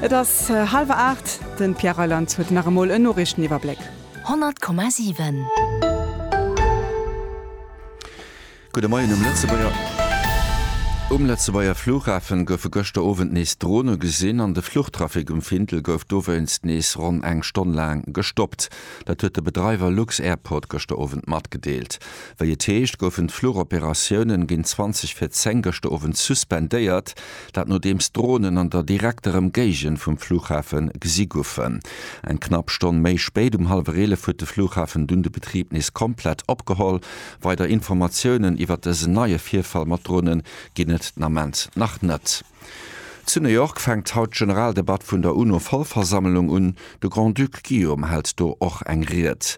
Et ass hallwer aacht. De Pierre Reyland huet nach emol en Noriichteniwwerbléck. 100,7. Gudde Moien um Lëtzebuerger. Um Lëtzebuerger Flughafen goufe gëschter Owend nees Drone gesinn an de Fluchtrafic um Findel gouf dowéinst nees ronn eng Stonn laang gestoppt. Dat huet de Bedreiwer lux-Airport gëschter Owend matgedeelt. Wéi et heescht, goufen d'Flugoperatiounen géint 20 vir 10 gëschter Owend suspendéiert. Dat nodeems d'Dronen an der direkter Emgéigend vum Fluchhafe gesi goufen. Eng knapp Stonn méi spéit, um hallwer 11 huet de Fluchhafen dunn de Betrib nees komplett opgeholl. Weider Informatiounen iwwert dësen neie Virfall mat Drone ginn et den Ament nach net. Zu New York fänkt haut d'Generaldebatt vun der UNO-Vollversammlung un. De Grand-Duc Guillaume hält do och eng Ried.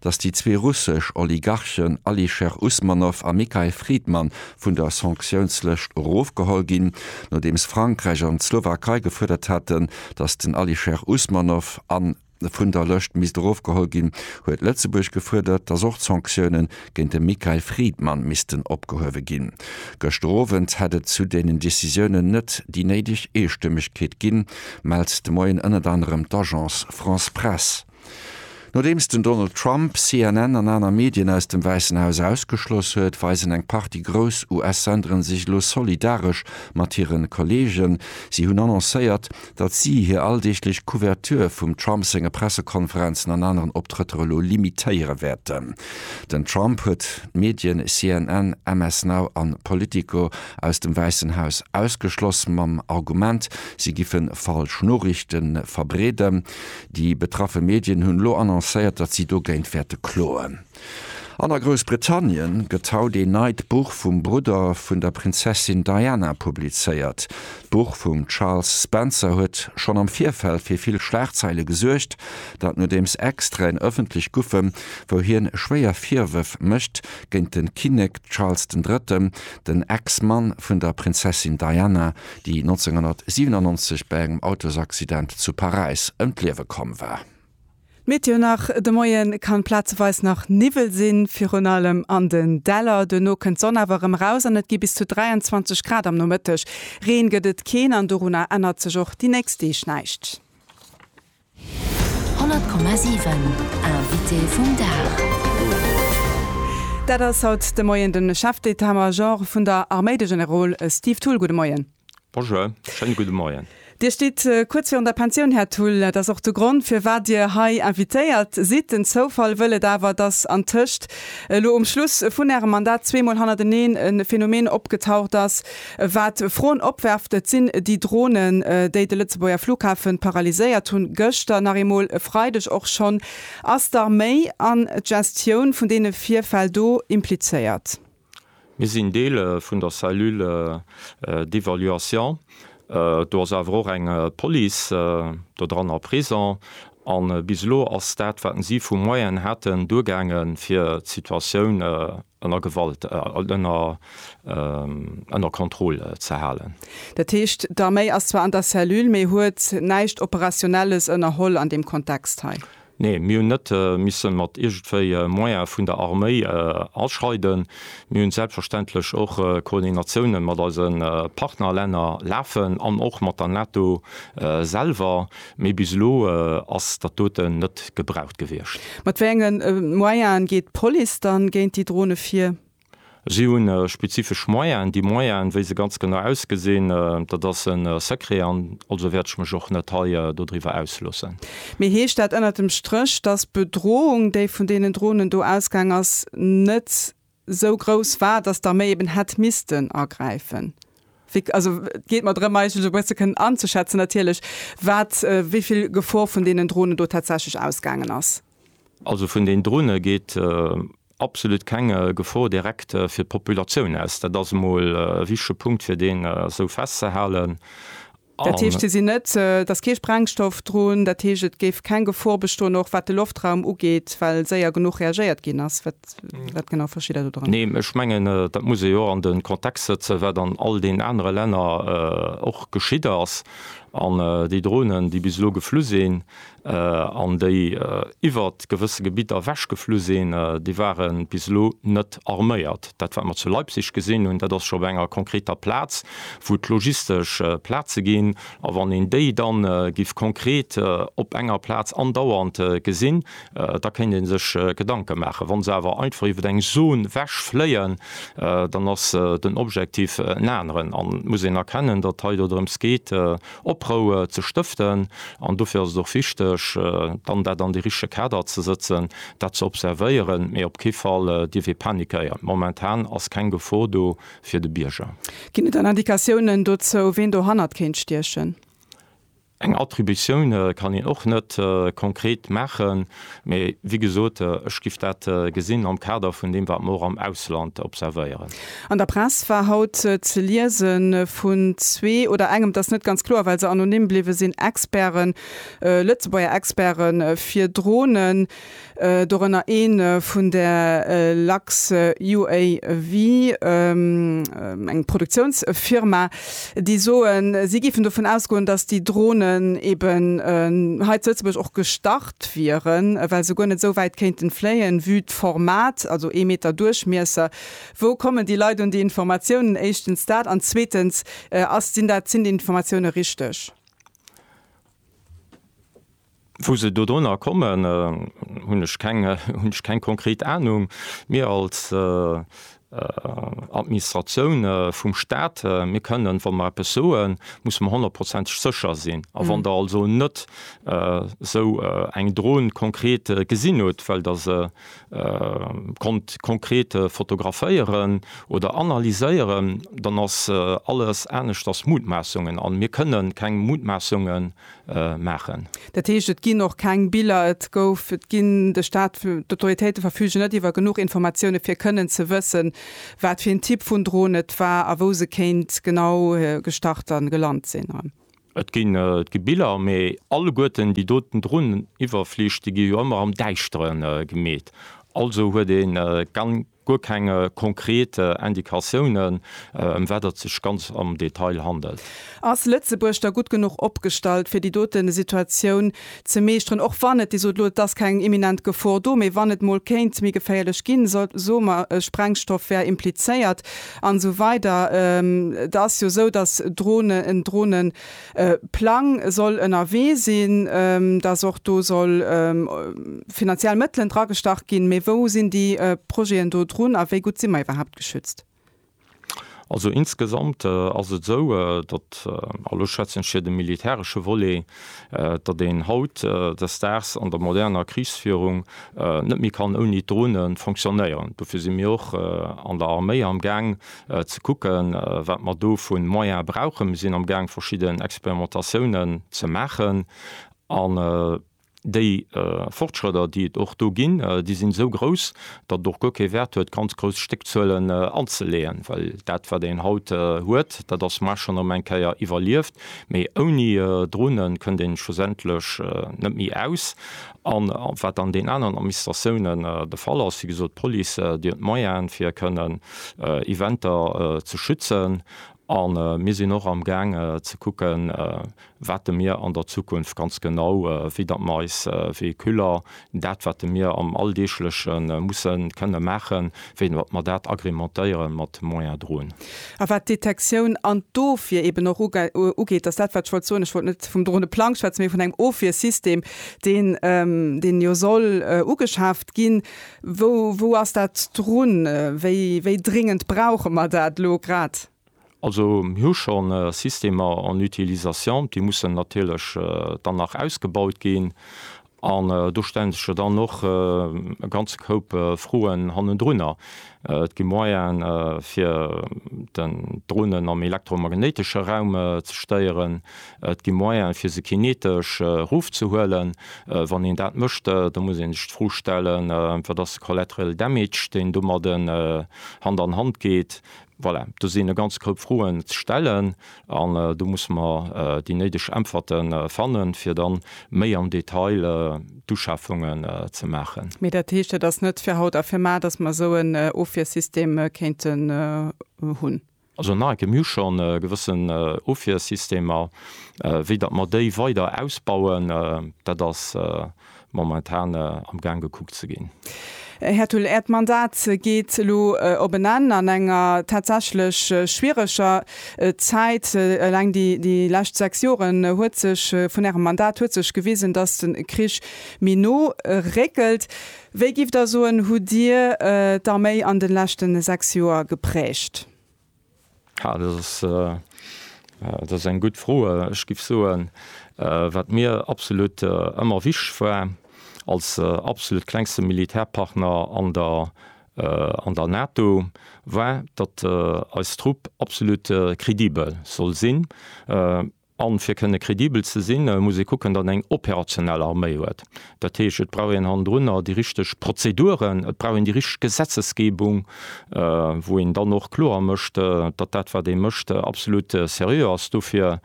datt déi zwee russesch Oligarchen Alisher Usmanov a Mikhail Fridman vun der Sanktiounslëscht erofgeholl ginn, nodeems Frankräich an d'Slowakei gefuerdert haten, datt den Alisher Usmanov an vun der Lëscht misst erofgeholl ginn, huet Lëtzebuerg gefuerdert, datt och d'Sanktioune géint de Mikhail Fridman missten opgehuewe ginn. Gëschter Owend hätt et zu deenen Decisiounen net déi néideg Eestëmmegkeet ginn, mellt de Moien ënnert anerem d'Agence France-Presse. Nodeems den Donald Trump CNN an aner Medien aus dem Wäissen Haus ausgeschloss huet, weisen eng Partie grouss US-Senderen sech elo solidaresch mat hire Kolleegen. Si hunn annoncéiert, datt si hir alldeeglech Couverture vum Trump senge Pressekonferenzen an aneren Optrëtter elo limitéiere wäerten. Den Trump huet d'Medien CNN, MS Now an Politico aus dem Wäissen Haus ausgeschloss, mam Argument, si giffen falsch Noriichte verbreeden. Déi betraffe Medien hunn elo annoncéiert, datt si dogéint wäerte kloen. An a Groussbritannien gëtt haut een neit Buch vum Brudder vun der Prinzessin Diana publizéiert. D'Buch vum Charles Spencer huet schonn am Virfeld fir vill Schlagzeile gesuergt. Dat nodeems Extraiten ëffentlech goufen, wou hien schwéier Virwërf mécht géint de Kinnek Charles den Drëtten, den Ex-Mann vun der Prinzessin Diana, déi 1997 bei engem Autosaccident zu Paräis ëm d'Liewe komm war. D'Meteo nach, De Moie kann plazeweis nach Niwwel sinn, virun allem an den Däller. Duerno kënnt d'Sonn awer erëm eraus an et gi bis zu 23 Grad am Nomëtteg. Reen gëtt et keen an dorunner ännert sech och déi nächst Deeg näischt. 100,7 Invité vum Dag. Dat ass haut de Moien de Chef d'État-Major vun der Arméi, de Generol Steve Thull. Gudde Moien. Bonjour, schéine gudde Moien. Dir stitt kuerz virun der Pensioun, Här Thull. Dat ass och de Grond, firwat Dir hei invitéiert sidd. Den Zoufall wëll et awer, dass antëscht elo um Schluss vun Ärem Mandat zweemol hannerteneen e Phänomen opgetaucht ass, Wat Froen opwerft, et sinn déi Dronen, déi de Lëtzebuerger Flughafen paralyséiert hunn, gëschter nach eemol, e Freideg och schonn. Ass d'Arméi an d'Gestioun vun deene Virfäll do implizéiert? Mir sinn Deel vun der Cellule d'évaluation. Do ass awer och eng Police dodranner présent. A bis elo ass dat, wat si vu Moyenen haten, duergaangen, fir d'Situatioun ënner Gewalt, ënner Kontroll ze halen. Dat heescht, d'Arméi ass zwar an der Cellule, mee huet näischt Operationelles ënnerholl an deem Kontext hei? Nee, mir hunn net misse mat iergendwéi Moyene vun der Arméi aschreiden. Mir hu selbstverständlech och Koordinatiounen mat eise Partnerlänner lafen an och mat der NATO selwer, Mee bis elo ass dat doten net gebraucht gewiescht. Mat wéi enge Moyenen geet d'Police dann géint déi Drone vir? Si hu spezifesch Moyenen. Déi Moyenen, wéi se ganz genau ausgesinn, dat ass e Secret an also wäert ech mech och net hei dodriwwer ausloossen. Mee heescht dat ënnert dem Stréch, dass d'Bedrohung, déi vun deenen Dronen do ausgaang ass, net sou grouss war, datt d'Arméi eben hätt missten agräifen. Wéi, also et geet mer drëm eigentlech e bësse ze kënnen anzeschätzen natierlech, wat, wéi vill Gefor vun deenen Dronen do tatsächlech ausgaangen ass. Also vun den Drone geet absolut keng Gefor direkt fir d'Populatioun aus. Dat ass emol e wichtege Punkt, fir deen esou festzehalen. Dat heescht, si sinn net, et ass kee Sprengstoff drun, dat heescht, et géif keng Gefor bestoen, och wat de Loftraum ugeet, well séier genuch reagéiert ginn ass? Wat genau versteet Der dodrënner? Nee, ech mengen, dat muss ee jo an de Kontext sëtzen, wat an all deenen anere Länner och geschitt ass. An déi Dronen, déi bis elo geflu sinn, an déi iwwer gewësse Gebidder ewechgeflu sinn, déi ware bis elo net arméiert. Dat wat mer zu Leipzig gesinn hunn, dat ass scho bei enger konkreter Plaz, wou et logistesch Plaze ginn. A wann een déi da giff konkret op enger Plaz andauernd gesinn, da kéint ee sech Gedanke maachen. Wa se awer einfach iwwer eng Zon ewechfléien, dann ass den Objektiv en aneren. An et muss een erkennen, datt hei dodrëms geet, Oproue ze stëften. An dofir ass et och wichteg, dann dat an de richtege Kader ze sëtzen, dat ze observéieren. Mee op kee Fall dierf ee panikéieren. Momentan ass keng Gefor do fir de Bierger. Ginn et dann Indikatiounen dozou, ween dohannert kéint stiechen? Eng Attributioun kann een och net konkret maachen. Mee wéi gesot, ech giff dat gesinn am Kader vun deem, wat mer och am Ausland observéieren. An der Press war haut ze liese vun zwee oder engem, et ass net ganz kloer, well se anonym bliwwe sinn, Experten, Lëtzebuerger Experte fir Dronen, dorënner ee vun der LuxUAV, eng Produktiounsfirma, déi soen, si géifen dovun ausgoen, datt déi Dronen eeben hei zu Lëtzebuerg och gestart, erlaabt wieren, well se guer net esou wäit kéinten fléien, vue d'Format, also ee Meter Duerchmiesser. Wou kommen déi Leit un déi Informatiounen? Éischtens dat, an zweetens, ass, sinn dat, sinn déi Informatioune richteg? Wou se dodrunner kommen, hunn ech keng, hunn ech keng konkret Ahnung. Mir als Administratioun vum Stat. Mir kënnen, wa mer eppes soen, musse mer honnertprozenteg sécher sinn. A wann Der also net esou eng Dron konkret gesinn hutt, well Der se konnt konkret fotograféieren oder analyséieren, dann ass alles aneschters Mutmaassungen. A mir kënnen keng Mutmaassungen maachen. Dat heescht, et ginn och keng Biller, et gouf, et ginn de Staat, d'Autoritéite verfügen net iwwer genuch Informatioune fir kënnen ze wëssen, wat fir een Typ vun Dron et war a wou se kéint genau gestart a gelant sinn. Et gi Biller, mee alleguerten déi doten Dronen iwwerflich, déi gi jo ëmmer am Däischteren gemeet. Also huet ee guer keng konkret Indikatiounen, ëm wat et sech ganz am Detail handelt. Ass Lëtzebuerg da gutt genuch opgestallt, fir déi dote Situatioun ze meeschteren, och wann et, Dir sot elo, et ass keng imminent Gefor do, mee wann et mol kéint méi geféierlech ginn, soe mer, e Sprengstoff wär implizéiert an esou weider, et ass jo esou, datt Dronen, en Dronen, Plang soll ënnerwee sinn, dass och do soll finanziell Mëttelen dragestach ginn. Mee wou sinn déi Projeten do drun a wéi gutt si mer iwwerhaapt geschützt? Also insgesamt ass et esou, datt, an elo schwätzen ech fir de militäresche Volet, datt een haut des Daags an der moderner Krichsführung net méi kann ouni d'Drone fonctionnéieren. Dofir si mir och an der Arméi amgaang ze kucken, wat mer do vu Moyene brauchen. Mir sinn amgaang verschidden Experimentatiounen ze maachen an déi Fortschrëtter, déi et och do ginn, déi sinn esou grouss, datt et och guer kee Wäert huet, ganz grouss Stéckzuelen anzeleeën, well dat, wat een haut huet, dat ass, mar schonn erëm eng Kéier iwwerlieft, mee ouni Drone kënnt ee schlussendlech net méi aus. A wat an deenen aneren Administratiounen de Fall ass, wéi gesot, d'Police, déi huet d'Moyene fir kënnen Eventer ze schützen. A mir sinn och amgaang ze kucken, wat de mir an der Zukunft ganz genau, wéi datt mer eis Véhiculer, dat wat de mir am Alldeegleche musse kënne maachen, wéi datt mer dat agrémentéiere mat Moyen Drone. A wat d'Detektioun an d'Ofwier eeben och ugeet, dat ass dat, wat ech wollt soen. Ech wollt net vum Droneplang schwätzen, mee vun engem Ofwiersystem, deen, deen jo soll ugeschaaft ginn. Wou, wou ass dat drun? Wéi, wéi dringend brauche mer dat elo grad? Also mir hu schonn Systemer en utilisation, déi mussen natierlech dann nach ausgebaut ginn. An do stellen sech jo dann och e ganze Koup Froen hannendrunner. Et gi Moyene fir den Dronen am elektromagnéitesche Raum ze stéieren, et gi Moyene fir se kinetesch erofzehuelen. Wann een dat mécht, da muss ee sech d'Fro stellen, wat ass de collateral damage, deen domadden Hand an Hand geet. Voilà, do sinn e ganz Koup Froen ze stellen an do musse mer déi néideg Äntwerte fannen, fir da méi am Detail d'Uschafungen ze maachen. Mee dat heescht, dat ass net fir haut a fir mar, dass mer esou en Ofwiersystem kéinten hunn? Also nach eng Kéier, Mir hu schonn e gewëssen Ofwiersystemer. Wéi datt mer déi weider ausbauen, dat ass momentan am Gaang gekuckt ze ginn. Här Thull, Äert Mandat geet elo op en Enn an enger tatsächlech schwiereger Zäit. Eleng déi lescht sechs Joren huet sech vun Ärem Mandat huet sech gewisen, datt de Krich méi no réckelt. Wéi, giff Der soen, hutt Dir d'Arméi an de leschte sechs Joer geprägt? Dat ass eng gutt Fro. Ech géif soen, wat mir absolut ëmmer wichteg war, als absolut klengste Militärpartner an der NATO, war, datt eis Trupp absolut kredibel soll sinn. An fir kënne kredibel ze sinn, muss ee kucken, datt eng operationell Arméi huet. Dat heescht, et brauch een hannendrunner déi richteg Prozeduren, et brauch een déi richteg Gesetzesgebung, wou een dann och kloer mécht, datt dat wat ee mécht absolut seriö ass. Dofir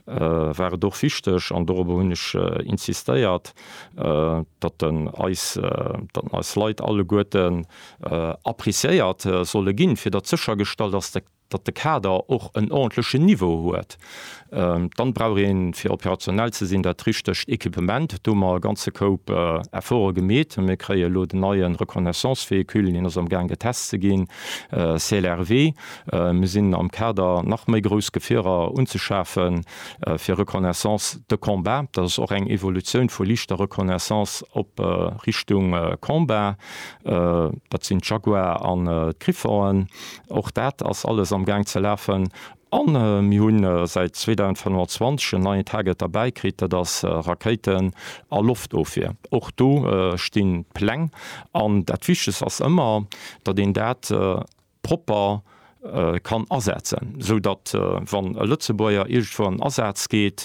war et och wichteg, an dorobber hunn ech insistéiert, datt eis Leit alleguerten appreciéiert solle ginn, fir datt séchergestallt ass, datt de Kader och en ordentlechen Niveau huet, dann brauch een, fir operationell ze sinn, dat richtegt Equipement. Do hu mer e ganze Koup Efforte gemeet. Mir kréie elo den neien Reconnaissance-Véhicule, hien ass am Gaang getest ze ginn, CLRV. Mir sinn am Kader nach méi grouss Gefierer unzeschafen fir Reconnaissance de combat. Dat ass och eng Evolutioun vu liichter Reconnaissance op Richtung Combat. Dat sinn d'Jaguar an d'Griffonen. Och dat ass alles am Gaang ze lafen. An mir hunn säit 2025 en neien Target derbäi kritt, dat ass Rakéiten a Loftofwier. Och do stinn d'Pläng. An dat Wichtegst ass ëmmer, datt een dat propper kann asetzen, esou datt, wann e Lëtzebuerger iergendwou an den Asaz geet,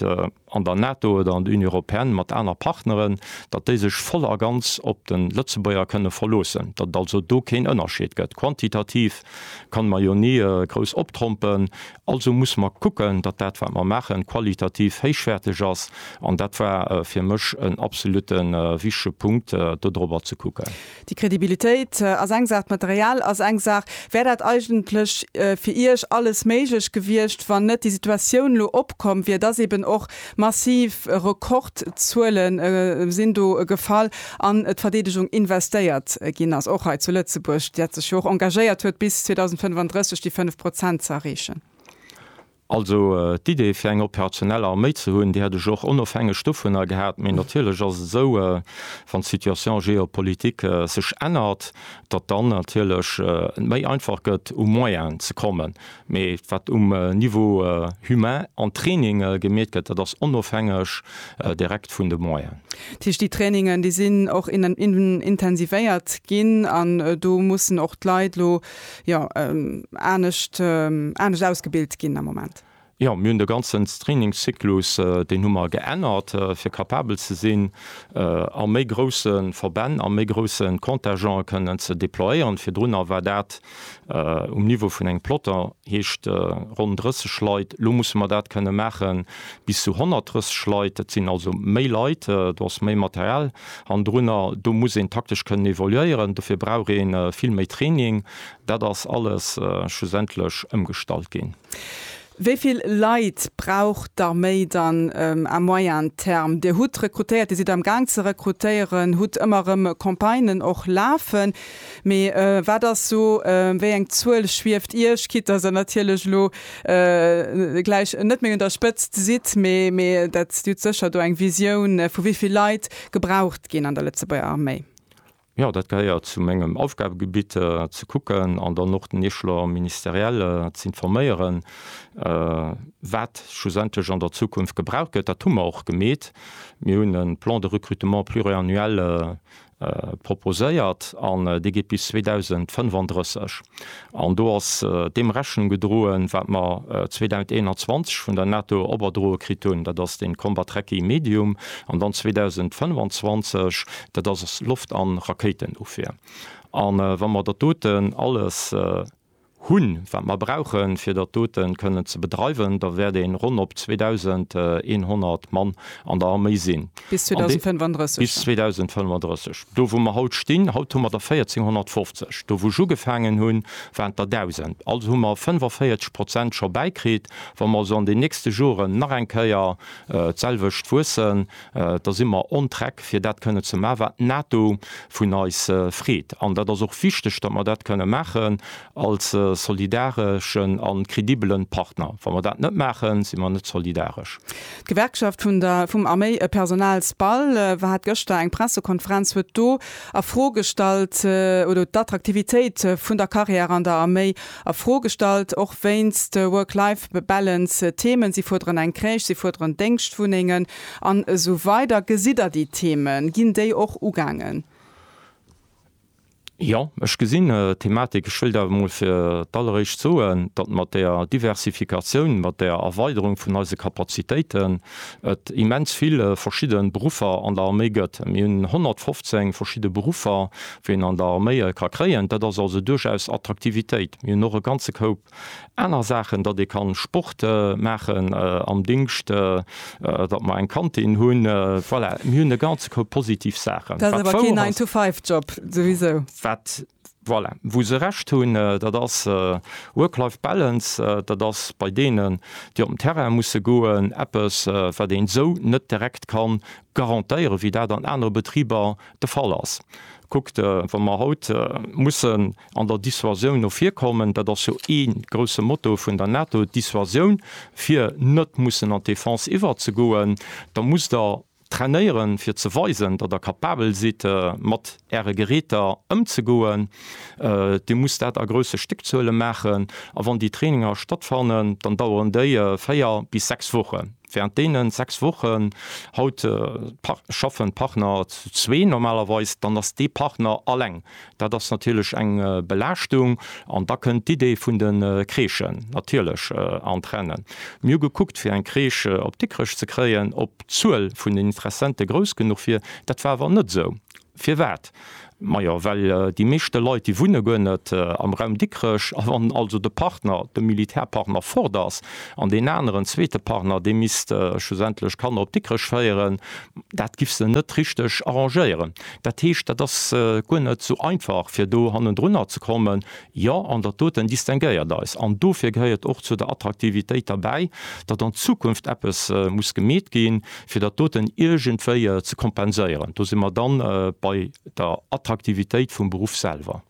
an der NATO oder an der Union européenne mat aner Partneren, datt déi sech voll a ganz op de Lëtzebuerger kënne verloossen, datt et also do keen Ënnerscheed gëtt. Quantitativ kann mer jo ni grouss optrompen, also muss mer kucken, datt dat wat mer maachen qualitativ héichwäerteg ass, an dat war fir mech en absolutte wichtege Punkt, dodrobber ze kucken. Déi Kredibilitéit ass eng Saach, d'Material ass eng Saach. Wär dat eigentlech fir Iech alles méiglech gewiescht, wann net déi Situatioun elo opkomm wier, dass eben och massiv Rekordzuele sinn do gefall an d'Verdeedegung investéiert ginn ass, och hei zu Lëtzebuerg, dat sech jo och engagéiert huet bis 2035 déi 5 Prozent ze erreechen? Also d'Idee fir eng operationell Arméi ze hunn, déi hätt ech och onofhängeg dovunner gehat. Mee natierlech ass et esou, wann d'Situation géopolitique sech ännert, datt dann natierlech et méi einfach gëtt u Moyen ze kommen. Mee wat um Niveau humain an Training gemeet gëtt, dat ass onofhängeg direkt vun de Moyen. Dat heescht, déi Trainingen, déi sinn och intensivéiert ginn an do mussen och d'Leit elo jo anescht anescht ausgebilt ginn am Moment. Jo, mir hunn de ganzen Trainingszyklus, deen hu mer geännert, fir kapabel ze sinn, a méi grousse Verbänn, a méi grousse Contingente kënnen ze déployéieren. Virdrunner war dat um Niveau vun engem Plotter, heescht ronn 30 Leit. Elo musse mer dat kënne maache bis zu 130 Leit. Dat sinn also méi Leit, do ass méi Material Hannendrunner, do muss een taktesch kënnen evoluéieren, dofir brauch ee vill méi Training. Dat ass alles schlussendlech ëmgestallt ginn. Wéi vill Leit brauch d'Arméi dann à moyen terme? Dir hutt rekrutéiert, Dir sidd amgaang ze rekrutéieren, hutt ëmmer erëm Campagnen och lafen. Mee wat ass sou, wéi eng Zuel schwieft Iech, quitte dass Der natierlech elo gläich net méi un der Spëtzt sidd, mee dat hutt sécher do eng Visioun, vu wéi vill Leit gebraucht ginn an der Lëtzebuerger Arméi? Jo, dat gehéiert zu mengem Aufgabegebitt, ze kucken an dann och den Echelon ministériel z'informéieren, wat schlussendlech an der Zukunft gebraucht gëtt. Dat hu mer och gemeet. Mir hunn e Plan de recrutement pluriannuel Proposéiert an dee geet bis 2035. An do ass deem Rechnung gedroen, wat mer 2021 vun der NATO oberdroe kritt hunn, dat ass den Combat Tracking Medium, an dann 2025, dat ass Loft an Rakéitenofwier. An wa mer dat doten alles hunn, wat mer brauchen, fir dat doten kënnen ze bedreiwen, da wäert een ronn op 2.100 Mann an der Arméi sinn. Bis 2035. Bis 2035. Do wou mer haut stinn, haut hu mer der 1.450. Do wou ech ugefaangen hunn, waren et der 1.000. Also hu mer 45 Prozent scho bäikritt. Wa mer also an den nächste Joren nach eng Kéier d'selwecht wuessen, Da si mer on track, fir dat kënne ze maachen, wat d'NATO vun eis freet. An dat ass och wichteg, datt mer dat kënne maachen als solidareschen a credibele Partner. Wa mer dat net maachen, si mer net solidaresch. D'Gewerkschaft vun der vum Arméipersonal SPAL hat gëschter eng Pressekonferenz, huet do a Fro gestallt oder d'Attraktivitéit vun der Carrière an der Arméi a Fro gestallt, och wéinst Work-Life-Balance Themen. Si fuerderen eng Crèche, si fuerderen Déngschtwunnengen an esou weider. Gesitt Der déi Themen? Ginn déi och ugaangen? Jo, ech gesinn d'Thematik. Ech wëllt awer emol fir d'alleréischt soen, datt mat der Diversifikatioun, mat der Erweiderung vun eise Kapazitéiten et immens vill verschidde Beruffer an der Arméi gëtt. Mir hunn 115 verschidde Beruffer. ween an der Arméie ka kréien. Dat ass also duerchaus Attraktivitéit. Mir hunn och e ganze Koup aner Saachen, datt ee kann Sport maachen am Dingscht, datt mer eng Kantin hunn. Voilà, mir hunn e ganze Koup positiv Saachen. Dat ass awer keen Nine to Five Job, souwisou. Wat, voilà, wou se Recht hunn, dat ass Work-Life Balance. Dat ass bei deenen, déi op den Terrain musse goen, eppes, wat een esou net direkt ka garantéieren, wéi dat an anere Betriber de Fall ass. Kuckt, wa mer haut mussen an der Dissuasioun no vir kommen, dat ass jo ee grouse Motto vun der NATO, d'Dissuasioun, fir net mussen an d'Defense iwwerzegoen, da musst Der trainéieren, fir ze weisen, datt Der capabel sidd, mat Äre Geräter ëmzegoen. Dir musst dat a grousse Stéckzuele maachen. A wann déi Traininger stattfannen, dann daueren déi véier bis sechs Wochen. Während deene 6 Wochen, haut schaffen d'Partner zu zwee normalerweis, dann ass dee Partner alleng. Dat ass natierlech eng Belaaschtung an da kënnt d'Idee vun de Crèchen natierlech an d'Rennen. Mir hu gekuckt fir eng Crèche op Dikrech ze kréien, ob d'Zuel vun den Interessente grouss genuch wier. Dat war awer net esou. Firwat? Majo well déi meeschte Leit déi wunne guer net am Raum Dikrech, a wann also de Partner, de Militärpartner fort ass, an deen aneren zweete Partner dee misst schlussendlech d'Kanner op Dikrech féieren, dat giff se net richteg arrangéieren. Dat heescht dat ass guer net sou einfach fir do hannendrunner ze kommen, Jo, an dat doten distinguéiert eis. An dofir gehéiert et och zu der Attraktivitéit derbäi, datt an Zukunft eppes muss gemeet ginn, fir dat doten iergendwéi ze kompenséieren. Do si mer dann bei der Attraktivitéit vum Beruff selwer.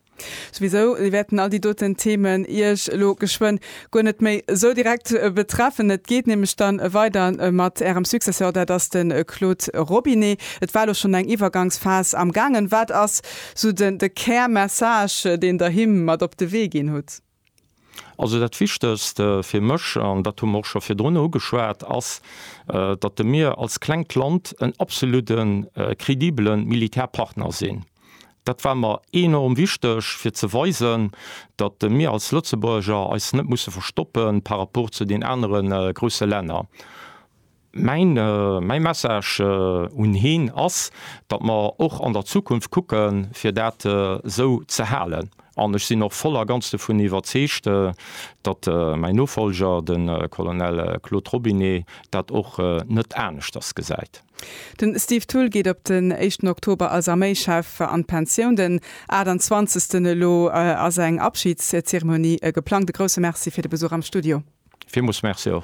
Souwisou wäerten all déi doten Themen Iech elo geschwënn guer net méi esou direkt betreffen. Et geet nämlech dann weider mat Ärem Successeur, dat ass de Claude Robinet. Et war elo schonn eng Iwwergangsphas am gaangen. Wat ass Sou den de Kär Message deen der him mat op de Wee ginn hutt? Also dat wichtegst fir mech, an dat hu mer och scho virdrun ugeschwat, ass datt de mir als klengt Land en absolute credibele Militärpartner sinn. Dat war mer enorm wichteg fir ze weisen, datt mir als Lëtzebuerger eis net musse verstoppe par rapport zu den anere grousse Länner. Mäi Message un hien ass, datt mer och an der Zukunft kucke fir dat esou ze halen. An ech sinn och voll a ganz dovun iwwerzeegt, datt mäi Nofollger, de Colonel Claude Robinet, dat och net aneschters gesäit. Den Steve Thull geet op den éischten Oktober als Arméischef an d'Pensioun. Den 28 elo ass eng Abschiedszeremonie geplangt. E grousse Merci fir de Besuch am Studio. Villmools Merci och.